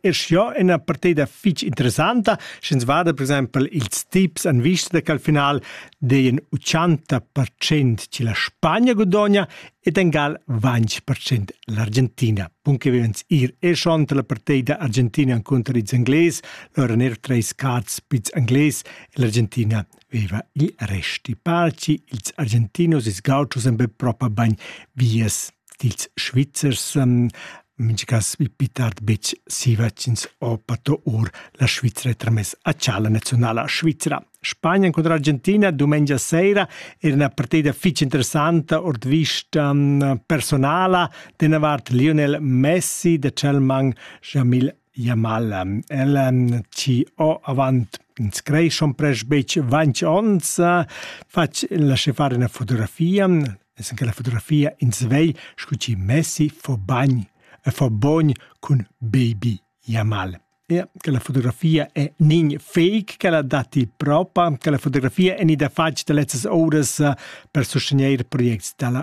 è sco ina partida fitg interessanta, sch'ins vada per exempel ils tips en vista che al final deien 80% che la Spagna guadogna ed engal 20% l'Argentina. Punche vivens ir e schon la partida Argentina contro ils Ingles, lora ner treis cats pits Ingles e l'Argentina veva gli resti. Parci ils Argentinos e Gauchos en be propa bagn vies dils Svizzers san mintgass pli tard betg siva ch'ins ho pato or la Svizra tramess a tschalla naziunala svizra. Spagna incontra Argentina dumengia sera era una partita fitg interessanta ord vista mm, personala. D'ena vart Lionel Messi, da Chelman Jamil Ja mal ehm ella chi ho avant ins creeschan prest betg vainch ons fatsch lasché far üna fotografia es in quella fotografia ins vei scu chi messi fo bagn fo bogn cun baby ja mal. Ja, quella fotografia è nin fake, quella datti propa, quella fotografia è gnida fatg da lezzas ouras per sustegnair projects da la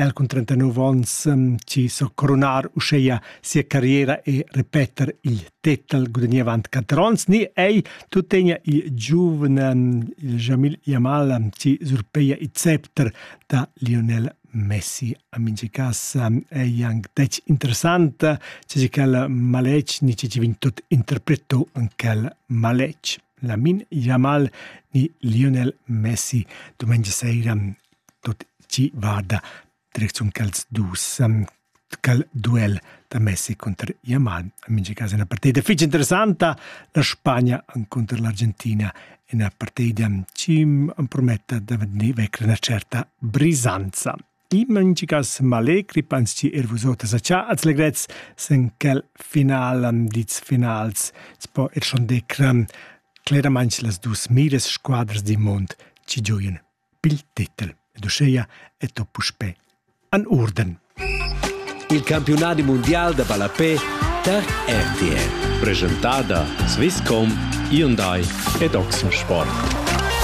El cun 39 onns chi so coronar uscheia sia carriera e repeter il tetel gudagneva avant 4 ons ni ei tuttegna il giuvna Jamil Yamal chi surpeia il scepter da Lionel Messi. A mingi cas ei anc dec interessanta, ce si quel maletg ni ce ci vin tot interpreto en quel maletg. Lamin Yamal ni Lionel Messi, domengia seira Tut tgi vada direcziun quels dus quel duel da Messi cunter Yamal en mintga cas ina partida fitg interessanta la Spagna encunter l'Argentina ina partida chi emprometta da vegnir vecra ina certa brisanza in mintga cas m'allegri pens chi er vus oters a cha als legrets sen quel final dits finals po er schon decra cleramaing las dus miras squadras di mond chi gioien pil titel ed uscheia è to puspè an urden. Il campiunadi mundial da ballapé tar RTR. Presentada Swisscom, Hyundai ed Oxensport.